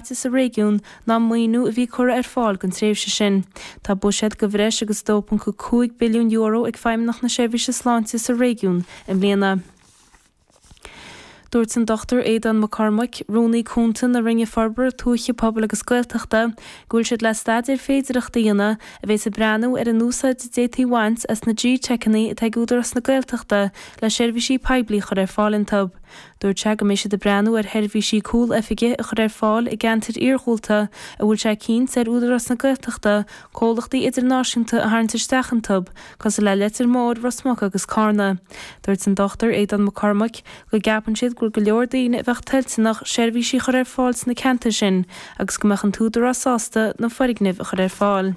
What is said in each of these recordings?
faighte sa réigiún ná maoiniú a bhí curtha ar fáil don tréimhse sin. Tá buiséad de bhreis agus €2.5 billiún ag Feidhmeannacht na Seirbhíse Sláinte sa réigiún i mbliana. Dúirt an Dr Aodhán Mac Cormaic, Rúnaí Cúnta na Roinne Forbartha Tuaithe, Pobail agus Gaeltachta, go bhfuil siad le staidéar féidearthachta a dhéanamh a bheas ag breathnú ar an úsáid a d'fhéadfaí bhaint as na G-Teiceanna atá ag Údarás na Gaeltachta le seirbhísí poiblí a chur ar fáil iontu. Dúirt sé go mbeidh siad ag breathnú ar sheirbhísí cúl-oifige a chur ar fáil i gceantair iarghúlta a bhfuil sé cinnt ar Údarás na Gaeltachta comhlachtaí idirnáisiúnta a tharraingt isteach iontub, cosúil le Leitir Móir, Ros Muc agus Cárna. Dúirt an Dr Aodán Mac Cormaic go gceapann siad gur go leor daoine a bheadh toilteanach seirbhísí a chur ar fáil sna ceantair sin agus go mbeadh an tÚdarás sásta na foirgnimh a chur ar fáil.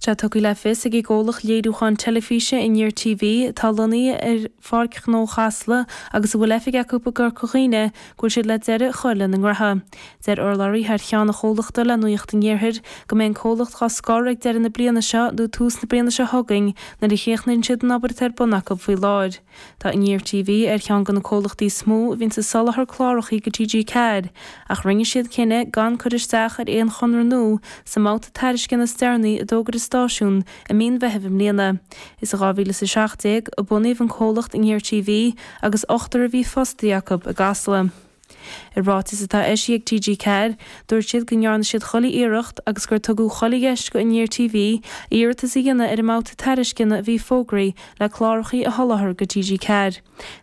Tá tugtha le fios ag an gcomhlacht léiriúcháin teilifíse, Aniar TV, atá lonnaithe ar Pháirc Ghnó Chasla agus a bhfuil oifig acu i gCorca Dhuibhne, go bhfuil siad le deireadh a chur lena ngraithe. Dúirt urlabhraí thar cheann an chomhlachta le Nuacht an Iarthair go mbeidh an comhlacht dá scor ag deireadh na bliana seo nó tús na bliana seo chugainn nuair a chríochnaíonn siad an obair atá ar bun acu faoi láthair. Tá Aniar TV ar cheann de na comhlachtaí is mó a bhíonn ag soláthar cláracha go TG4 ach rinne siad cinneadh gan cur isteach ar aon chonradh nua sa mbabhta tairisceana is deireanaí a d'fhógair an stáisiún i mí an Mheithimh i mbliana. Is i 2017 a bunaíodh an comhlacht Aniar TV agus ochtar a bhí fostaithe acu i gCasla. I ráiteas atá eisithe ag TG4, dúirt siad go ndearna siad chuile iarracht agus gur tugadh chuile dheis go Aniar TV iarratas a dhéanamh ar an mbabhta tairisceana a bhí fógraithe le clárachaí a sholáthar go TG4.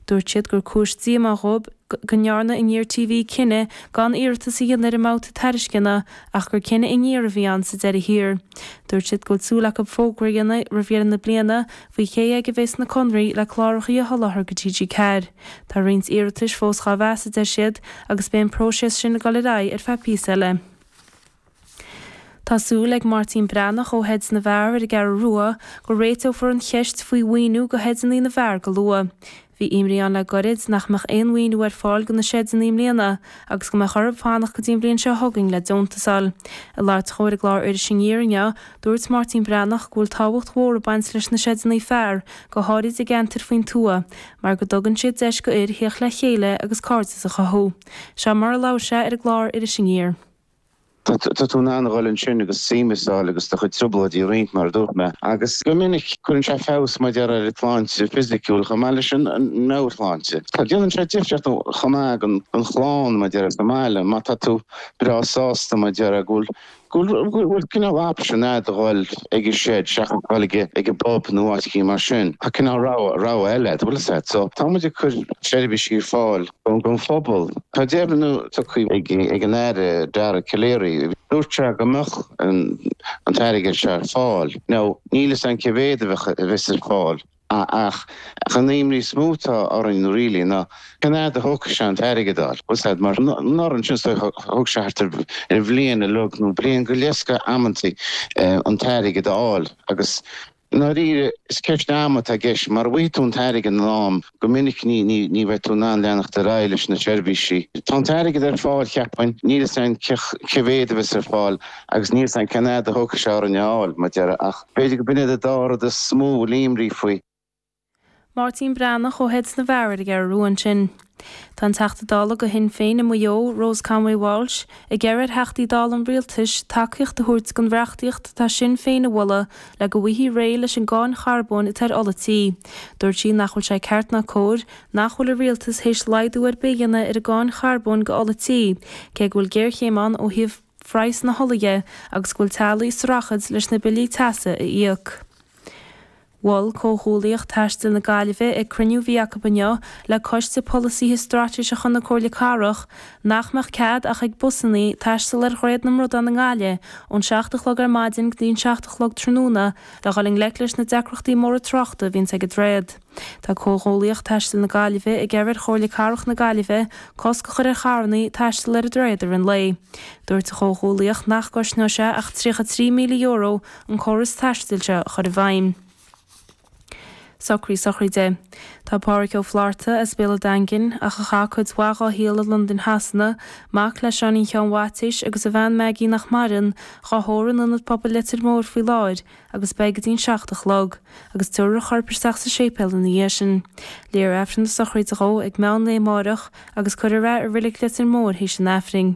Dúirt siad gur cúis díomá dhóibh go ndearna Aniar TV cinneadh gan iarratas a dhéanamh ar an mbabhta tairisceana ach gur cinneadh Aniar a bhí ann sa deireadh thiar. Dúirt siad go bhfuil súil acu fógra a dhéanamh roimh dheireadh na bliana faoi cé aige a bheas na conraí le clárachaí a sholáthar go TG4. Tá roinnt iarratais fós dhá mheas, a deir siad, agus beidh an próiseas sin ag dul ar aghaidh ar feadh píosa eile. Tá súil ag Máirtín Breathnach ó Sheid na bhFear ar an gCeathrú Rua go réiteofar an cheist faoi mhaoiniú go Sheideanna na bhFear go luath. Bhí imní ann le goirid nach mbeadh aon mhaoiniú ar fáil do na seideanna i mbliana agus go mbeadh orthub fanacht go dtí an bhliain seo chugainn le deontas a fháil. Ag labhairt dhó ar an gclár Iris Aniar inniu, dúirt Máirtín Breathnach go bhfuil tábhacht mhór ag baint leis na seideanna fear go háirid i gceantair faoin tuath mar go dtugann siad deis go fhir theacht le chéile agus cairdeas a chothú. Seo mar a labhair sé ar an gclár Iris Aniar. Tá tú in ann a dhul ansin agus suí síos agus do chuid trioblóidí a roinnt, mar a dúirt mé, agus go minic cuireann sé feabhas, mar deir, ar an tsláinte fisiciúil chomh maith leis an meabhairshláinte. Déanann sé difríocht chomh maith don chlann, mar deir, sa mbaile, má tá tú breá sásta, mar deir, go bhfuil go bhfuil cineál option a'd a dhul ag an shed seachas dhul ag ag an bpub nó áit éigin mar sin. Tá cineál rogha rogha eile a'd, a bhfuil 'fhios a'd. So, tá muid ag cur seirbhísí ar fáil. an phobal. Tá deimhniú tugtha ag an Aire Dara Calleary, dúirt sé go mbeadh an t-airgead seo ar fáil, nó níl 'fhios a'm cé mhéad a bheadh a bheas ar fáil ach an aidhm níos mó atá orainn really ná cén fhaid a thógfaidh sé an t-airgead a fháil last year, anuraidh ansin, so thóg sé thart ar bhliain iomlán nó bliain go leith scaití, amanntaí an t-airgead a fháil agus I ndáiríre, is ceist ama atá i gceist. Mara bhfaighidh tú an t-airgead in am, go minic ní bheidh tú in ann leanacht ar aghaidh leis na seirbhísí. Tá an t-airgead ar fáil, cheapfainn, níl fhios againn cé mhéad a bheas ar fáil agus níl fhios againn cén fhad a thógfaidh sé orainn é a fháil, mar a déarfá, ach b'fhéidir go b'in é an dá rud is mó a bhfuil imní faoi. Máirtín Breathnach ó Shed na bhFear ar an gCeathrú Rua ansin. Tá an Teachta Dála de Shinn Féin i Maigh Eo, Rose Conway-Walsh, ag iarraidh ar Theachtaí Dála an Rialtais tacaíocht a thabhairt don reachtaíocht atá Sinn Féin a mholadh le go bhfaighfí réidh leis an gcáin charbóin atá ar ola tí. Dúirt sí nach bhfuil sé ceart ná cóir nach bhfuil an Rialtas théis laghdú ar bith a dhéanamh ar an gcáin charbóin d'ola tí, cé go bhfuil géarchéim ann ó thaobh phraghas na hola dhe agus go bhfuil teaghlaigh ag streachailt leis na billí teasa a íoc. Mhol Comhghuallaíocht Taistil na Gaillimhe, ag cruinniú bhí acu inniu le Coiste Polasaithe Straitéiseacha na Comhairle Cathrach, nach mbeadh cead ach ag busannaí taisteal ar Dhroichead na mBradán i nGaillimh ón seacht a chlog ar maidin go dtí an seacht a chlog tráthnóna le dhul i ngleic leis na deacrachtaí móra tráchta a bhíonns ag an droichead. Tá Comhghuallaíocht Taistil na Gaillimhe ag iarraidh ar Chomhairle Cathrach na Gaillimhe cosc a chur ar charrannaí taisteal ar an droichead ar feadh an lae. Dúirt an Chomhghuallaíocht nach gcosnódh sé ach tríocha a trí míle euro an córas taistil seo a chur i bhfeidhm. Socruithe sochraide. Tá Pádraic Ó Flaithearta as Béal an Daingin, ach a chaith cuid mhaith dá shaol i Londain Shasana, mac le Seáinín Sheáin Mhaitiais agus a bhean Maggie nach maireann, dhá thórramh in Ionad Pobail Leitir Móir faoi láthair agus beidh go dtí'n seacht a chlog, agus tabharfar a chorp isteach sa séipéal ina dhiaidh sin. Léifear Aifreann na sochraide dhó ag meán lae amáireach agus cuirfear é i Reilig Leitir Móir th'éis an Aifrinn.